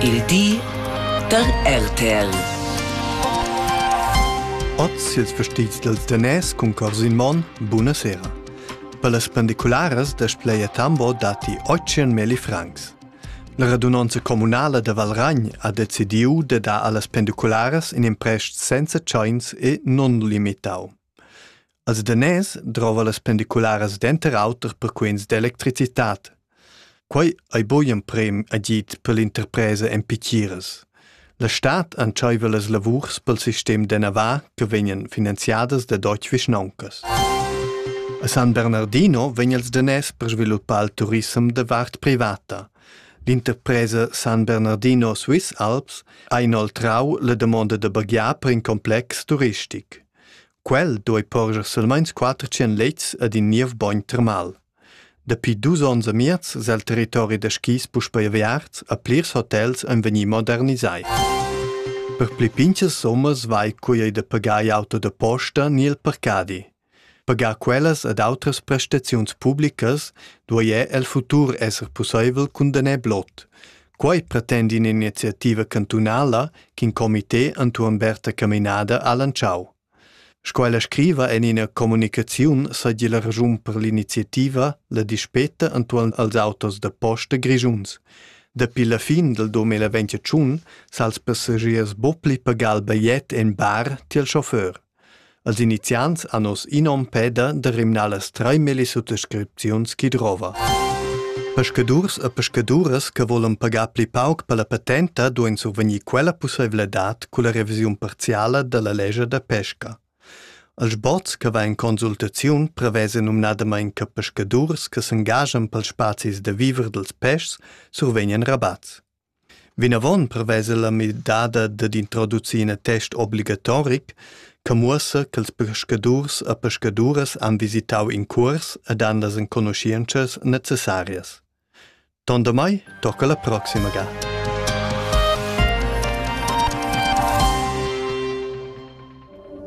Il di da RTL. Oz ils vestits del tenés cun cors in mon, buonasera. Per las pendicularas da Spleia Tambo dati 800.000 francs. La radunanza comunala de Valragn ha decidiu de dar allas pendicularas in imprest senza tscheins e non limitau. Als daners drova las pendicularas denter auter per quens d'electricitat. Quei ei bugen prem agid per l'interpresa en pitiras. La stad entscheiva las lavurs pel sistem de Navarra che vegnan finanziadas da Deutsche Vischnoncas. A San Bernardino vegn els daners per sviluppar il turism de vart privata. L'interpresa San Bernardino Swiss Alps ha inoltrau la damonda da baghiar per in complex turistic. Quel doi porscher silmeins quater tschien lets ed in niev bogn termal. Dapi dus onns e miez sel territori da skis puspei aviarts a plirs hotels ein vegni modernisai. Per pli pinchas sommas vai cui ei da pagar auto da posta ni il parcadi. Pagar quellas ed outras prestaziuns publicas duei el futur esser pusseivel cun daner blot, Quei pretend in'iniziativa cantunala ch'in comité entuorn Berta Caminada ha lantschau. Sco ella scriva en ina communicaziun seigi la raschun per l'iniziativa la dispeta entuorn als autos da posta grischuns. Dapi la fin del 2021 s'ha els passagiers bo pli pagal bajet en bar tiel chauffeur. Als iniziants han oz inom peda da rimnar las treimelli suttascripziuns chi drova. Peschadurs e pescaduras che volan pagar pli pauc per la patenta duein survegnir quella pusseivladad culla revisiun parziala dalla lescha da pesca. Als bots che va in consultaziun prevesa numnadamain che pescadurs che s'engaschan pels spazis da viver dels peschs survegnan rabats. Vinavon prevesa la midada dad introducir in attest obligatoric che muossa ch'ils peschadurs e pescaduras han visitau in cuors ed han las enconuschientschas necessarias. Tondamai tocca la proxima ga.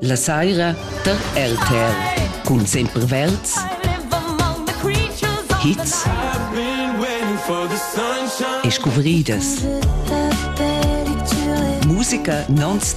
La saira tar RTL cun Semperverds hits e scuvridas. Musica non-stop